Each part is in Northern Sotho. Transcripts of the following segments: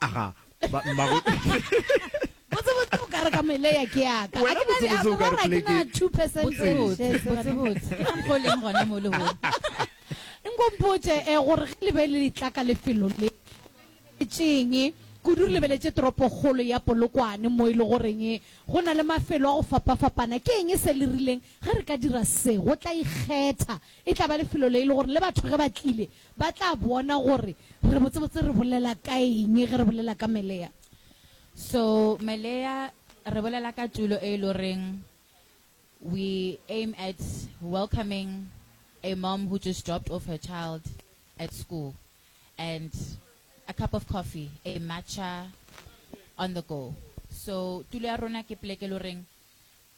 Aga, ba, mmago. Botsebotse bo kare ka mele ya ke yaka. Wena botsebotse o kare pleke. Ke na 2% botsebotse. Botsebotse. Ke ka mokgwa o leng gona mo lehono. Nkompotše eh gore ge le be le le tla ka lefelo le, tšeng kudu re lebeletše toropokgolo ya Polokwane mo e le goreng go na le mafelo a go fapafapana. Ke eng se le rileng ge re ka dira se? Go tla ikgetha. E tla ba lefelo le e le gore le batho ge ba tlile Ba tla bona gore re botsebotse re bolela ka eng ge re bolela ka melea. So melea re bolela ka tulo e e lo reng we aim at welcoming a mom who just dropped off her child at school and a cup of coffee, a matcha on the go. So tulo ya rona ke pleke e lo reng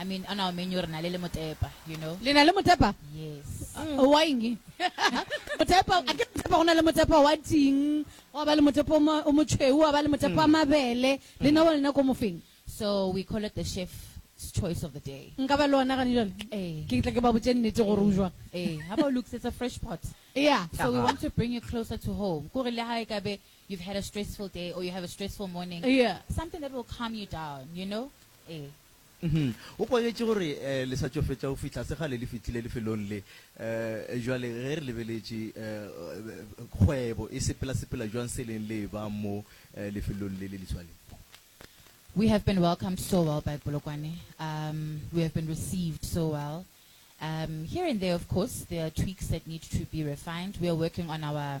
I mean, on our menu re na le le motepa, you know. Le na le motepa? Yes. Uh, mm. Wa eng? Motepa, a ke motepa go na le motepa wa ting, wa ba le motepa o motšhweu, wa ba le motepa wa mm. mabele. Le na wa mm. lena ko mofeng? So we call it the chef's choice of the day. Nka ba le ona gane jale? Eh. Ke tla ke ba botse nnete gore o jwa. Eh, how about Luke's it's a fresh pot? Yeah. So we want to bring you closer to home. Kore le ha e ka be you've had a stressful day or you have a stressful morning. Yeah. Something that will calm you down, you know? Ee. Uhum. O kwagetše gore le sa tšo fetša go fihla se kgale le fihlile lefelong le. Bjale ge re lebeletše kgwebo e sepela-sepela bjang seleng le eba mo lefelong le le leswa le. We have been welcomed so well by Polokwane. Um, we have been received so well. Um, here and there, of course, there are tweaks that need to be refined. We are working on our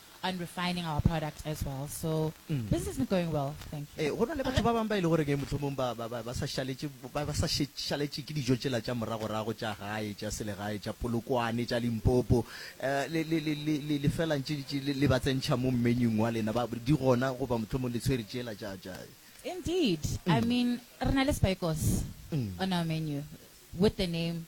on refining our product as well. So mm. business is going well, thank you. Eh, go na le batho ba bang ba ile gore ke motlhomong ba ba ba sa shaletše ba ba sa shaletše ke dijo tsela tša moragorago tša gae tša selegae tša polokwane tša limpopo eh, le le le le le felang tše le ba tsentšha mo mmenyung wa lena ba di gona goba motlhomong le tshwere tsela tša tša Indeed. Mm. I mean, re na le spikos mm. on our menu with the name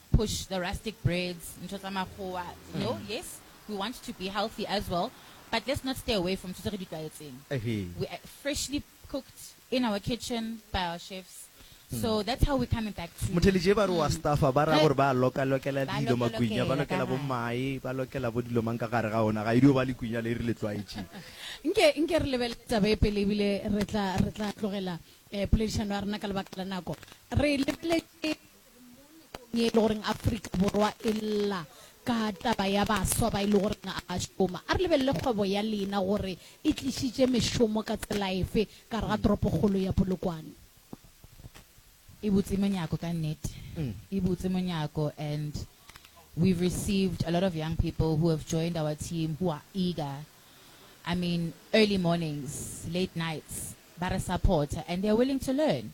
push the rustic breads, ntho tsa makgowa, you know, mm. yes, we want to be healthy as well, but let's not stay away from ntho tse re di tlwaetseng. We are freshly cooked in our kitchen by our chefs. so hmm. that's how we coming back to motheledje ba re wa hmm. staffa ba ra gore ba loka lokela dilo makunya ba lokela bo mae ba lokela bo dilo mang ka gare ga ona ga idio e ba le kunya le re le tlwaetše nke nke re lebele taba e pele ebile re tla re tla tlogela eh poledišano ya rena ka lebaka la nako re lebeletse ye e le goreng Afrika Borwa e lla ka taba ya baswa ba e le goreng a ba šoma. A re lebelele kgwebo ya lena gore e tlišitše mešomo ka tsela efe ka gare ga toropokgolo ya Polokwane. E butse monyako ka nnete. E butse monyako and we've received a lot of young people who have joined our team who are eager. I mean early mornings, late nights ba re supporter and they are willing to learn.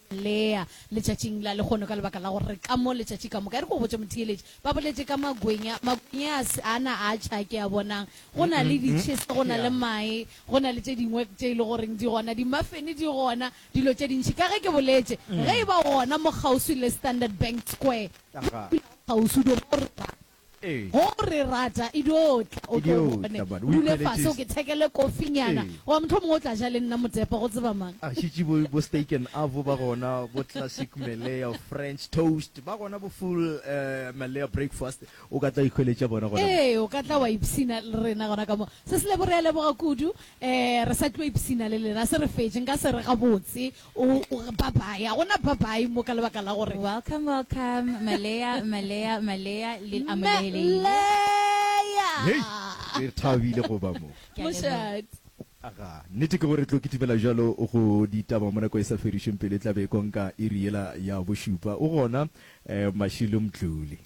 Lea, letšatšing la lehono, ka lebaka la gore re ka mo letšatši ka moka. E re ke go botše, motheeletši, ba boletše ka magwenya, magwenya a se a na a tšha ke a bonang. Go na le ditšhesa, go na le mae, go na le tše dingwe tše e le goreng di gona, dimafene di gona, dilo tše dintši. Ka ge ke boletše, ge e ba gona mo kgauswi le Standard Bank Square, kgauswi, di go rera. Go re rata e dio tla o tlo bone. Dule fase o ke thekele kofi nyana goba mohlomongwe o tla ja le nna motepa go tseba mang. A šetše bo bo steak and avo ba gona, bo classic Malaya French toast ba gona, bo full Malaya breakfast o ka tla ikhweletša bona gona mo. Ee, o ka tla wa ipshina le rena gona ka mo. Seselebo re a leboga kudu. Ee, re sa tlo ipshina le lena se re fetše. Nka se re gabotse O, o, bye-bye. A go na bye-bye mo ka lebaka la gore. Welcome, welcome, Maleya, Maleya, Maleya, le amogelegile. Maleya! Hei! Re thabile go ba mo. Ke a leboga. Mošate. Aga, nnete ke gore tlo kitimela bjalo go ditaba mo nako e sa fedišweng pelo e tla be e konka iri yela ya bošupa. O gona, eh, Mashilo Mtluli?